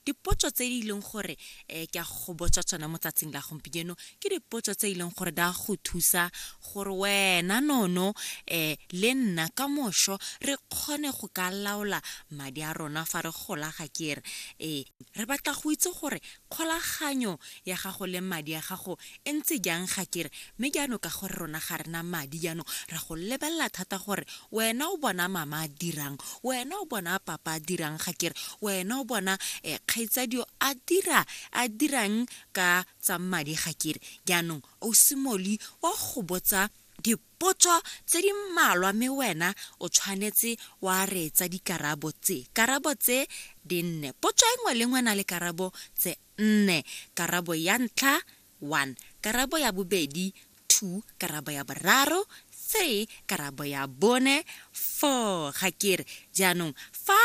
dipotso tse di leng gore um ke a go botsa tsona mo tsatsing la gompieno ke dipotso tse e leng gore da go thusa gore wena nono um le nna ka moso re kgone go ka laola madi a rona fa re gola ga kere ee re batla go itse gore Kgolaganyo ya gago le madi a gago e ntse jang ga ke re? Mme jaanong ka gore rona ga re na madi jaanong ra go lebelela thata gore wena o bona mama a dirang, wena o bona papa a dirang ga ke re, wena o bona kgaitsadio a dira a dirang ka tsa madi ga ke re. Jaanong o simoli wa go botsa di. Potso tse di mmalwa mme wena o tshwanetse wa reetsa dikarabo tse. Karabo tse di nne. Potso e nngwe le nngwe na le karabo tse nne. Karabo ya ntlha, one, karabo ya bobedi, two, karabo ya boraro, three, karabo ya bone, four, ga ke re. Jaanong fa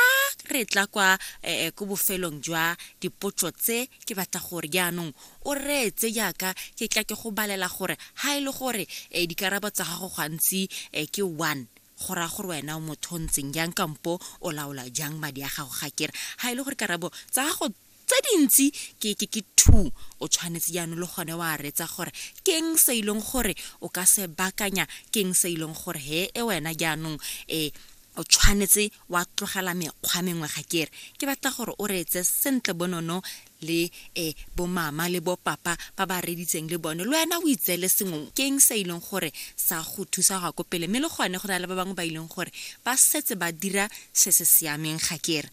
re tla kwa eh, eh, ko bofelong jwa dipotso tse, ke batla gore jaanong O reetse jaaka ke tla ke go balela gore ha e le gore e dikarabo tsa gago gantsi e ke one, go raya gore wena o motho o ntseng jang kampo o laola jang madi a gago. Ga ke re ha e le gore karabo tsa gago tse dintsi ke ke ke two, o tshwanetse jaanong le gone wa reetsa gore keng se e leng gore o ka se bakanya, keng se e leng gore he e wena jaanong e o tshwanetse wa tlogela mekgwa mengwe. Ga ke re ke batla gore o reetse sentle bonono le e bomama le bopapa ba ba reditseng le bone le wena o itseele sengwe keng sa ileng gore sa go thusa go ya ko pele mme le gone go na le ba bangwe ba ileng gore ba setse ba dira se se siameng ga kere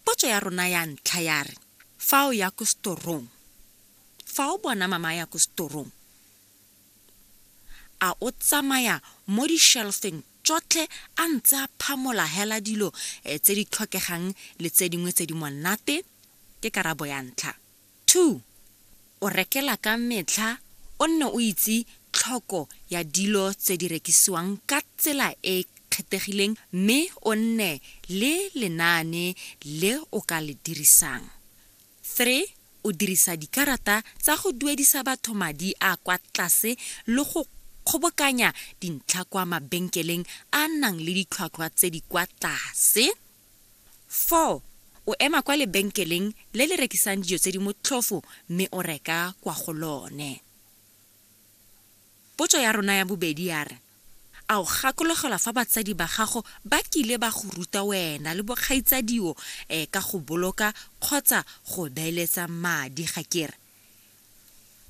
potso ya rona ya ntlha ya re fa o ya ko setorong fa o bona mama ya ko setorong A o tsamaya mo di-shelf-eng tšotlhe a ntse a phamola hela dilo tse di tlhokegang le tse dingwe tse di monate? Ke karabo ya ntlha. Two, o rekela ka metlha o nne o itse tlhoko ya dilo tse di rekisiwang ka tsela e e kgethegileng mme o nne le lenaane le o ka le dirisang. Three, o dirisa dikarata tsa go duedisa batho madi a kwa tlase le go kgobokanya dintlha kwa mabenkeleng a a nang le ditlhwatlhwa tse di kwa tlase. Four, o ema kwa lebenkeleng le le rekisang dijo tse di motlhofo mme o reka kwa go lone. Potso ya rona ya bobedi ya re, A o gakologelwa fa batsadi ba gago ba kile ba go ruta wena le bokgaitsadio ka go boloka kgotsa go beeletsa madi, ga ke re?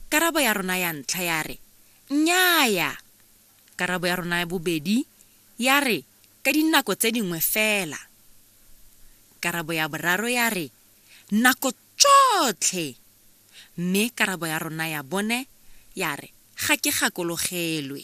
Karabo ya rona ya ntlha ya re, Nnyaya! Karabo ya rona ya bobedi ya re, Ka dinako tse dingwe fela. Karabo ya boraro ya re, Nako Tšotlhe! Mme karabo ya rona ya bone ya re, Ga ke gakologelwe.